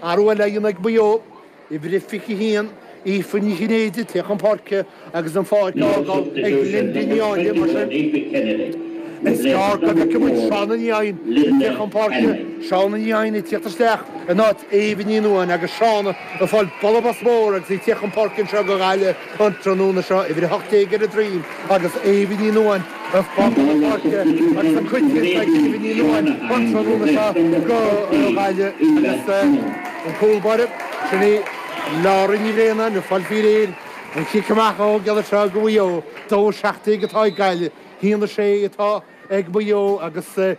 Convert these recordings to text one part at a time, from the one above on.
Athrú eile á dhéanamh ag Maigh Eo uimhir a 21, Aoife Ní Chinnéide, ag tíocht chun páirce agus an pháirc á fhágáil ag Lynda Ní Áinle, mar sin is gearr go bhfeicfimid Shauna Ní Eidhin ag tíocht chun páirce, Shauna Ní Eidhin ag tíocht isteach in áit Éabha Ní Nuain agus Shauna ag fáil bualadh bos mór agus í ag tíocht chun páirce anseo go Gaillimh. An tráthnóna seo, uimhir 18 ar a droim, agus Éabha Ní Nuain ag fágáil na páirce agus an cuid thíos ag Éabha Ní Nuain an tráthnóna seo go Gaillimh agus an cúl báire, sin í Laura Ní Bhraonáin ag fáil faoi réir an cic amach a thógáil anseo go Mhaigh Eo. 2 17 atá ag Gaillimh, 1 6 atá ag Maigh Eo agus.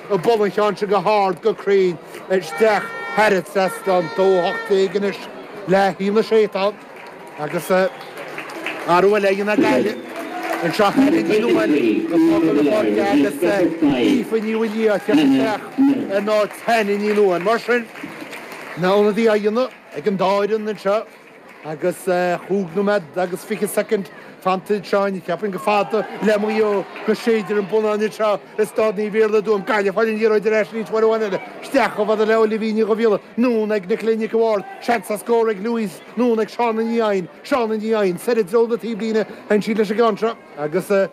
ag bualadh an cheann seo go hard go cruinn isteach thar an trasnán dó hocht déag anois le haon a sé atá ann agus athrú eile á dhéanamh ag Gaillimh anseo Hannah Ní Nuain ag fágáil na páirce agus Aoife Ní Mhaolmhuaidh ag teacht isteach in áit Hannah Ní Nuain mar sin na hionadaithe á dhéanamh ag an dá fhoireann anseo. Agus cúig nóiméad agus fiche soicind fanta ag Seáin, cheapfainn chomh fada le Maigh Eo go séidfear an bonnán anseo i Staid Naomh Iarlaith i dTuaim, Gaillimh ag fáil an liathróid ar ais arís uair amháin eile. Isteach chomh fada le Olivia Ní Dhubhghiolla anonn ag Nicola Nic a' Bhaird. Seans ar scór ag Louise anonn ag Shauna Ní Eidhin. Shauna Ní Eidhin soir i dtreo na taobhlíne. Téann sí leis an gceann seo agus.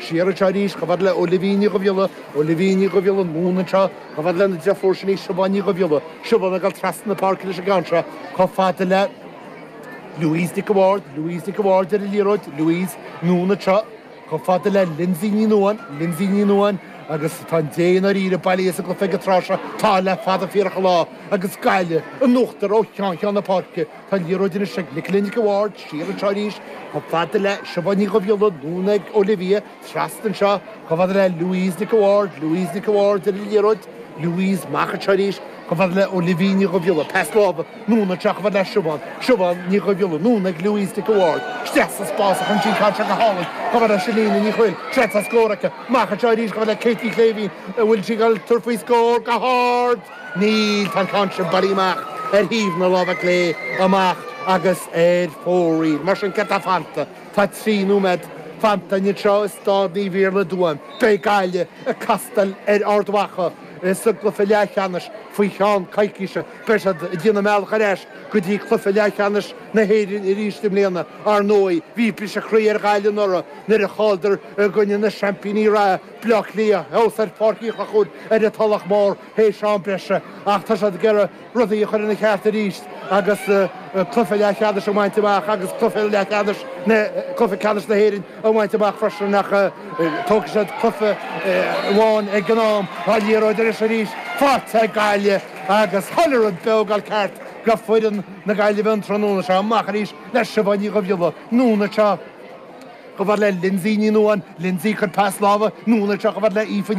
Siar anseo arís, chomh fada le Olivia Ní Dhubhghiolla, Olivia Ní Dhubhghiolla, anonn anseo, chomh fada lena deirfiúr sin í, Siobhán Ní Dhubhghiolla, Siobhán ag dul trasna na páirce leis an gceann seo, chomh fada le Louise Nic a Bháird, Louise Nic a Bháird ar an liathróid, Louise, anonn anseo, chomh fada le Lynsey Ní Nuain, Lynsey Ní Nuain agus tá an dé i ndáiríre bailithe as an gcluiche ag an tráth seo, tá, le fada fíorach an lá, agus Gaillimh in uachtar ó cheann cheann na páirce. Tá an liathróid anois ag Nicola Nic a' Bhaird siar anseo arís chomh fada le Siobhán Ní Dhubhghiolla, anonn ag Olivia trasna anseo chomh fada le Louise Nic a' Bhaird, Louise Nic a' Bhaird ar an liathróid, Louise amach anseo arís chomh fada le Olivia Ní Dhubhghiolla, pas láimhe, anonn anseo chomh fada le Siobhán, Siobhán Ní Dhubhghiolla, anonn ag Louise Nic a' Bhaird, sraith sa spás ag cur an ceann seo go hálainn chomh fada le Chellene Ní Thrill, seans ar scór aici, amach anseo arís chomh fada le Kate Ní Shléibhín an bhfuil sí ag dul ag tabhairt faoi scór go hard! Níl, tá an ceann sin bailithe amach ar thaobh na láimhe clé amach agus ar fóraoil. Mar sin céard atá fanta? Tá trí nóiméad fanta anseo i Staid Naomh Iarlaith i dTuaim. Beidh Gaillimh ag castáil ar Ard Mhacha sa gcluiche leathcheannais faoi cheann coicíse. Beidh siad ag déanamh a mbealach ar ais go dtí cluiche leathcheannais na hÉireann arís i mbliana. Ar ndóigh bhí briseadh croí ar Ghaillimh anuraidh nuair a chailleadar i gcoinne na seaimpíní reatha. Bleá Cliath, thuas ar Pháirc Uí Chonchúir ar an Tulach Mhór théis am breise ach tá siad ag iarraidh rudaí a chur ina cheart arís agus cluiche leathcheannais a bhaint amach agus cluiche leathcheannais na, cluiche ceannais na hÉireann a bhaint amach freisin ach tógfaidh siad cluiche amháin ag an am. Tá liathróid anois arís faighte ag Gaillimh agus chuile rud beag ag goil ceart go foireann na Gaillimhe an tráthnóna seo. Amach arís le Siobhán Ní Dhuibhghiolla, anonn anseo. Gabhar le Lindsay Ní Nuain, Lindsay, cuir pas lámha, Nuan, anseo, gabhar le Aoife,